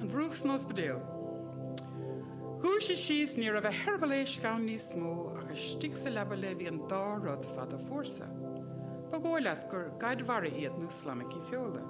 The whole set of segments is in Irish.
An Mhurúch san Ospidéal. Dhúisigh sí is ní raibh a heireaball éisc ann níos mó, ach istigh sa leaba léi bhí an dá rud fada fuar seo. Ba dhóigh leat gur gaid mhara iad nó slaimicí feola.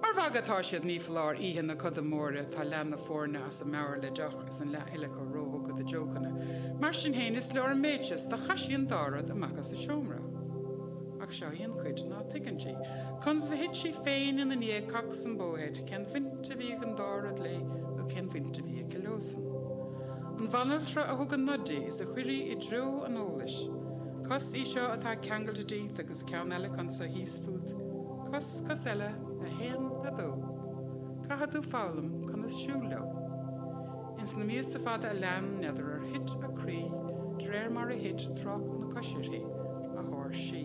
Mar mhagadh atá siad, ní foláir, oíche na coda móire tá leath na foirne as a meabhair le deoch is an leath eile acu róthugtha do jokeanna. Mar sin féin, is leor an méid seo is do chaith sí an dá rud amach as an seomra. Ach seo í an chuid ná tuigeann sí. Conas a thit sí féin ina ndiaidh, cocs-um-bo-head? Cén bhaint a bhí ag an dá rud léi nó cén bhaint a bhí aici leosan? An bhanaltra a thug an nod di is a chuir í i dtreo an eolais. Cos í seo atá ceangailte díot agus ceann eile acu anseo thíos fút. Cos, cos eile, a haon, a dó. Caithfidh tú foghlaim conas siúl leo. Ins na míosa fada a lean, n'fheadar ar thit a croí de réir mar a thit trácht na coise uirthi, a háirsí.